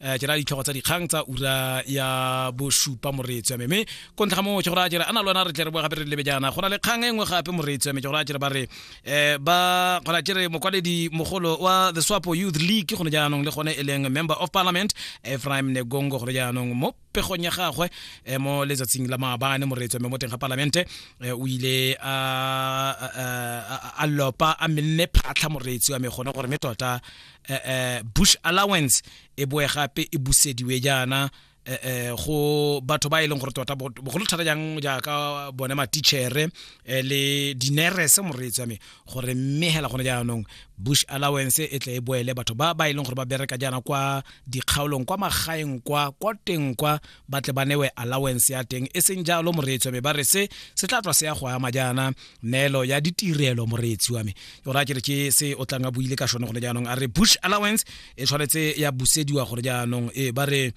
um ke na ditlhogo tsa dikgang tsa ura ya bosupa moreetsi ya meme ko ntlha ga moo ke gore a jere a na le wena re tle re boe gape re lebe jaana go na le kgang e nngwe gape moreetsi ya me ke gore a jere ba re um ba gona jere mokwaledi mogolo wa the swapo youth league gone jaanong le gone e leng member of parliament ephraim negongo gone jaanong mo pegong ya gagwe um mo letsatsing la maabane moreetsi ya me mo teng ga parlamente um o ile a lopa a menne phatlha moreetsi wa me gone gore me tota eh, eh, bush allowance e boe gape e busediwe jaana eh, eh, go batho ba e leng gore tota bogolo thata jang jaaka bone matichere eh, le dinerese moreetsi wa me gore mme hela gone jaanong bush allowance e tle e boele batho ba ba e leng gore ba bereka jaana kwa dikgaolong kwa magaeng kwa kwa teng kwa ba tle ba newe allowance ya teng e seng jalo moreetsi wa me ba re se se tla tswa se ya go ama jaana neelo ya ditirelo moreetsi wa me o raya kere ke se o tlang a buile ka sone gone jaanong a re bush allowance e tshwanetse ya busediwa gore jaanong e ba re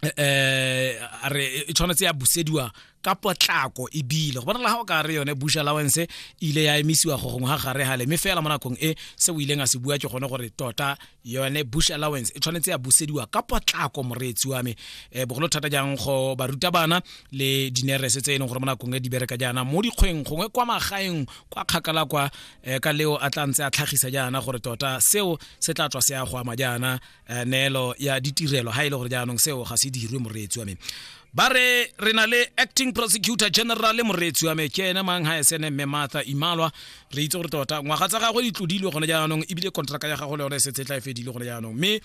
eh, eh a re e tshwanetse ya busediwa ka potlako e bile go bonala ga o ka re yone bush allowance e ile ya emisiwa go gongwe ga gare gale mme fela mo nakong e se o ileng a se bua ke gone gore tota yone bush allowance e tshwanetse ya busediwa ka potlako moreetsi wa me um bogolo thata jang go baruta bana le dinerese tse e leng gore mo nakong e di bereka jaana mo dikgweng gongwe kwa magaeng kwa kgakala kwa um ka leo a tla ntse a tlhagisa jaana gore tota seo se tla tswa se ya go ama jaana eh, neelo ya ditirelo ha e le gore jaanong seo ga se dirwe moreetsi wa me ba re re na le acting prosecutor general moreetsi wa me ke ene mang ha esene mme martha imalwa re itse gore tota ngwaga tsa gagwe di tlodilwe gone jaanong ebile contraka ya gago le yone e setse e tla e fedile gone jaanong mme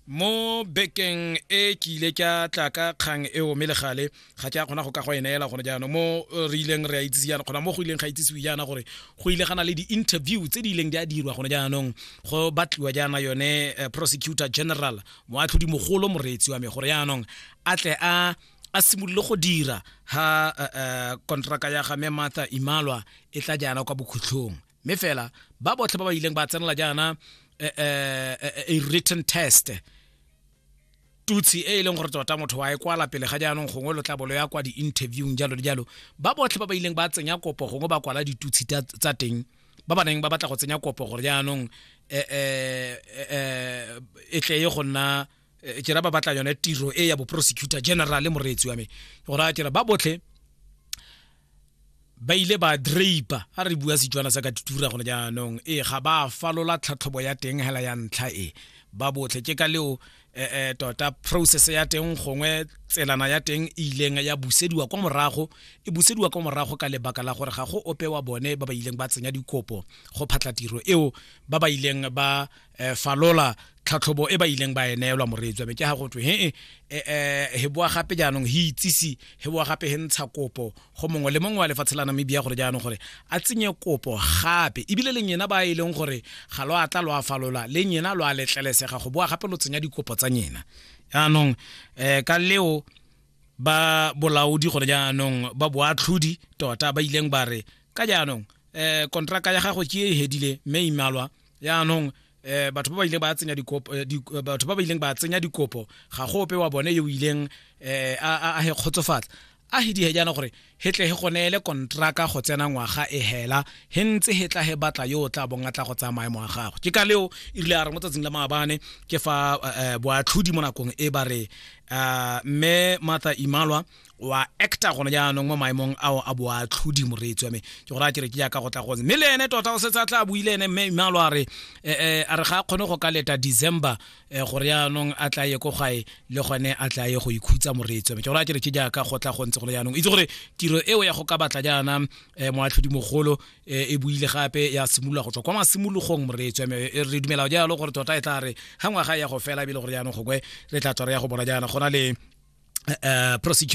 mo bekeng e ke ile ka tla ka kgang eo mme legale ga ke a kgona go ka go e neela gone jaanong mo eh, re ileng re a itsise jaana kgona mo go ileng ga itsisiwe jaana gore go ile gana le di-interview tse di ileng di a dirwa gone jaanong go batliwa jaana yone eh, prosecutor general moatlhodi mogolo moreetsi wa me gore jaanong a tle a a simolole go dira ha eh, eh, kontraka ya ga me martha imalwa e tla jaana kwa bokhutlhong mme fela ba botlhe ba ba ileng ba tsenela jaana eh, eh, eh, a written test tutsi e e leng gore tota motho wa e kwala pele ga jaanong gongwe lo tla bolo ya kwa di-interviewng jalo le jalo ba botlhe ba ba ileng ba tsenya kopo gongwe ba kwala ditutsi tsa teng ba ba neng ba batla go tsenya kopo gore jaanong eh, eh, eh, e tle ye go nna ke ra ba batla yone tiro e ya bo prosecutor general moreetsi wa me gore a ke ba botlhe ba ile ba drape a re bua setswana sa ka tutura gone jaanong ee ga ba falola tlhatlhobo ya teng hela ya ntlha e ba botlhe ke ka leo eh, eh, tota process ya teng gongwe tselana ya teng e ileng ya busediwa kwa morago e busediwa kwa morago ka lebaka la gore ga go ope wa bone ba ba ileng ba tsenya dikopo go phatla tiro eo ba ba ileng ba eh, falola tlhatlhobo e ba ileng ba e neelwa moreetswa be ke ga go twe he eh, eh, eh, he boa gape jaanong he itsise he boa gape he ntsha kopo go mongwe le mongwe wa lefatshe la namibia gore jaanong gore a tsenye kopo gape ebile le nyena ba e leng gore ga lo atla lo a falola le nyena lo a letlelesega go boa gape lo tsenya dikopo tsa nyena jaanong um ka leo ba bolaodi gore jaanong ba boatlhodi tota ba ileng ba re ka jaanong um kontraka ya gago ke e hedile mme imalwa yaanong eh batho ba ba ile ba tsenya dikopo eh, eh, batho ba ba ileng ba tsenya dikopo ga go ope wa bone yo ileng eh a a he khotsofatsa a he di he jana gore he tle he gonele kontraka go tsena ngwaga e hela he ntse he tla he batla yo tla bong tla go tsamaya mo gago ke ka leo e rile a re mo tsatsing la maabane ke fa eh, eh, boatlhodi mo nakong e ba re me mata imalwa wa actor gone jaanong mo maemong ao a boatlhodi moreetsi wa me ke gore a kere ke jaaka go tla gone mme le ene tota o setse a tla buile ene mme imalo a re eh, eh, a re ga a kgone go ka leta december eh, gore jaanong a tla ye ko gae le gone a tla ye go ikhutsa moreetsi wa me ke gore a kere ke jaaka go tla gontse gone jaanong itse gore tiro eo ya go ka batla jaana moatlhodi mogolo e buile gape ya simolola go tswa kwa masimologong moreetsi wa me e re dumela jalo gore tota e tla re ga ngwaga ya go fela ebile gore jaanong gokwe re tla tswa re ya go bona jaana gona le uh, prosecutor